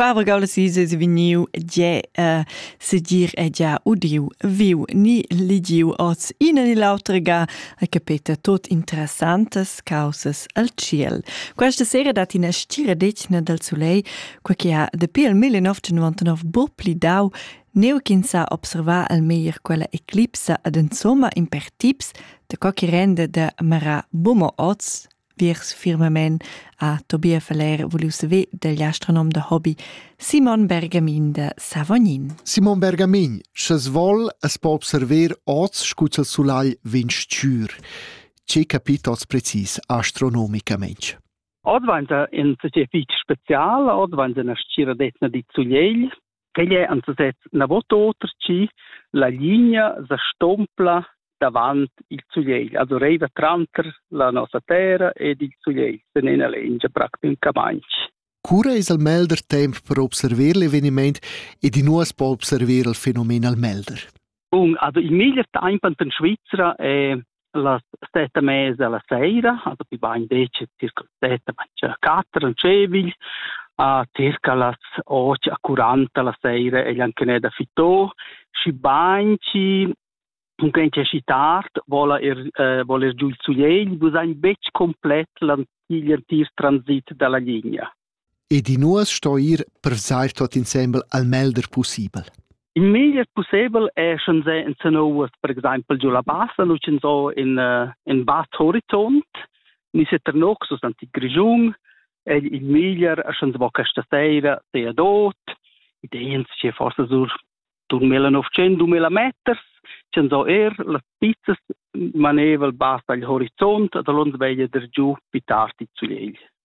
Quavre Gaulesi se vegniu ge uh, sedir è gia udiu, viu ni ligiu oz ina ni l'autra ga e capeta tot interessantes causas al ciel. Questa sera dat ina stira decina dal Soleil, qua che ha dapi il 1999 bo plidau neu ch'ins sa observar al meglier quella eclipsa ad insomma impertips de co che rende de mara bumo oz viers firmamein a Tobias Faller vuliu saver dagl astronom da hobby Simon Bergamin da Savognin. Simon Bergamin, sches vol es po observer oz scu il sulai vegn stür. Ce capit oz precis astronomicamente? Oz vainta in società fitg special, oz vainta una scira d'etna di Zugliegl, Quei è anzutez na vot oter chi la linea sa stompla davant il sulegl, also reiva tranter la nossa terra ed il sulegl sen ena lengia practicamaintg. Cura es al melder temp per observer l'eveniment ed i nu as po observer il fenomen al melder? Bun, also il meglier tempo in Svizzera è las sette e mezza la sera, also più bain decide circa sette, ma quattro in Cevigl, a circa las 8 a 40 la sera è anche da Fitò, și banci cunquent è și tard, vola er, eh, voler giù il suiegl, bu sein betg complet l'antigl antir transit dalla linea. ed in uors sto ir per vesair tuot insembel al melder pussibel. Il meglier pussebel è sch'ins è in Sanowas, per exempel giu la Bassa, nu sch'ins ho in, uh, in Bad Horizont, ni se Ternoxus anti Grischun, è il meglier sch'ins vo questa sera sea dot, ideens che forse sur 2900-2000 meters, sch'ins ho er las pizzas maneval basta al horizont, da l'ons veglia der giu più tardi zu egl.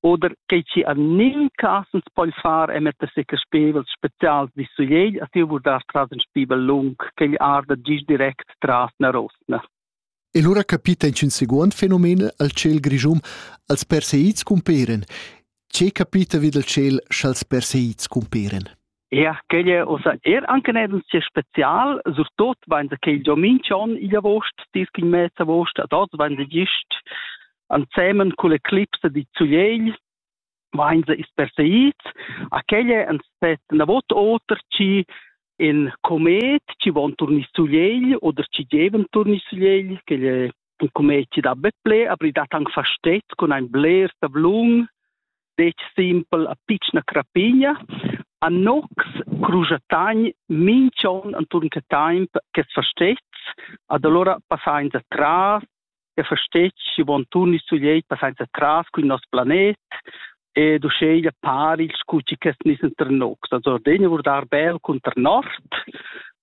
oder che ci an nin casens poi far e metter se che spevel specials di su jei a tiu vurdar tras in spibel lung che gli arda gis direct tras na rosna E lura capita in seguond fenomen al ciel grischum als perseids cumperen. Ce capita vid al ciel sch'als perseids cumperen? Ja, quella osa er anche nel sia special, surtut wenn der quel Giomin schon in August, dis in März August, dort wenn der gist ansemen con le clipse di Zugliel, wenn sie ist perseid, a quelle an set na vot oter ci in comet ci von turni Zugliel oder ci geven turni Zugliel, quelle il commerci da bet ple, aber ich dat anche versteht con ein bler tablun, dec simpel a piccina crapigna, a nox crujatagn mincion anturn che temp che versteht, ad allora passain da tras, che versteht, si von turni su lei passain da tras con il nostro planet, e du sceglie pari il scucci che nissen ter nox. Also Denia wurde arbel con ter nord,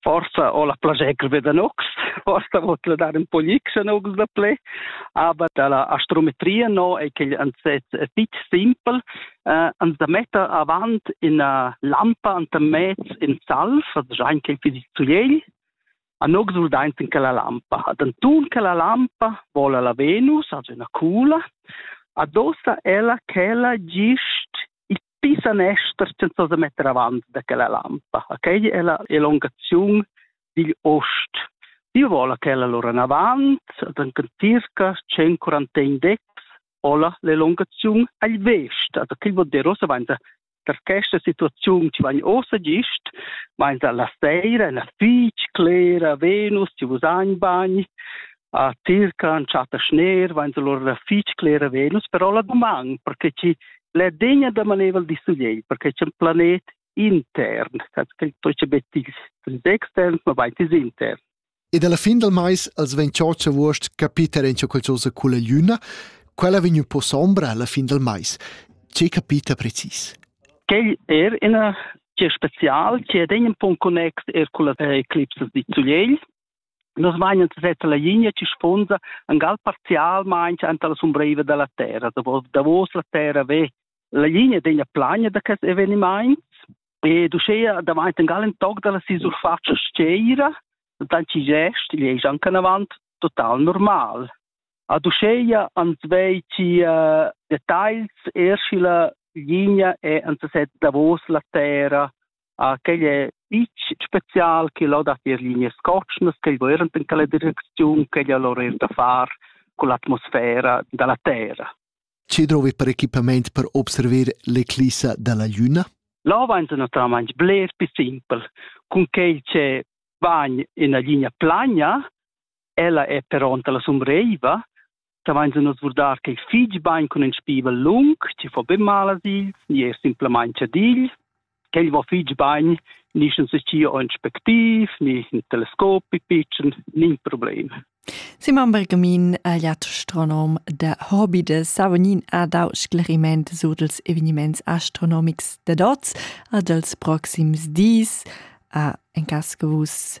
forsa ho la plascher be da nox, forsa vot la dar un po glics a nox da ple, aber da la astrometria no è che ans è fitch simpel, eh, ans da metta avant ina lampa anta mez in salv, also già in quel fisit zugliegl, a nox ul daint in quella lampa. Ad antun quella lampa vola la Venus, also una cula, adossa ella chella gist il Pi sanester senza da metter avant da quella lampa. Okay? È la elongazione digl ost. Io vola quella lora in avant, ad circa 141 decs, hola l'elongazione agl vest. Ad quel vuol dire ossa vainda per questa situazione ci van ossa gist, vainda la seira, la fitg clera, Venus, ci vus bagni, a circa chatta schner vain allora fich clera Venus, però la doman, perché chi l'è degna da manevel di sugliei, perché c'è un planet intern, che toce betis extern, ma vain tis intern. Ed alla fin del mais als vegn cioccia vuost capiter in qualcosa con la luna, quella vegn un po' sombra alla fin del mais. Ce capita precis? Quel er ina che special, che è un po' connex er con la eclipse di Zugliel, Nus meinen a setter la linea che sponsa un gal parzialmein anta la sumbreva dalla terra, davos la terra ve la linea degna plagna da quest eveniments e duschea davanti un gal en toc dalla si surfaccia sceira, dann ci gest, gli ei anche avant total normal. A duscheia ans vei ci uh, details, erschila linea e ans set davos la terra Ah, quei è fitg spezial che lo dat ir linee scotschnas, quei während in quella direcziun, quei è lor er da far con l'atmosfera dalla terra. Che drovi per equipament per observer l'eclissa dalla luna? Là va naturalmente bler più simpel. Con quei che va in una linea plana, ella è pronta la sombreiva, savains nus vurdar che fich bain cun ün spivel lung, chi fo be mal a ils, ni er simplamaing ad ils. Quel vo fich bain, ni scha se scia ün spectiv, ni ün telescop pitschen, nin problem. Simon Bergamin, agliat astronom da Hobby de Savognin, ha dau scleriment sur dels eveniments astronomics de dots a dels proxims dis, a en cas che vus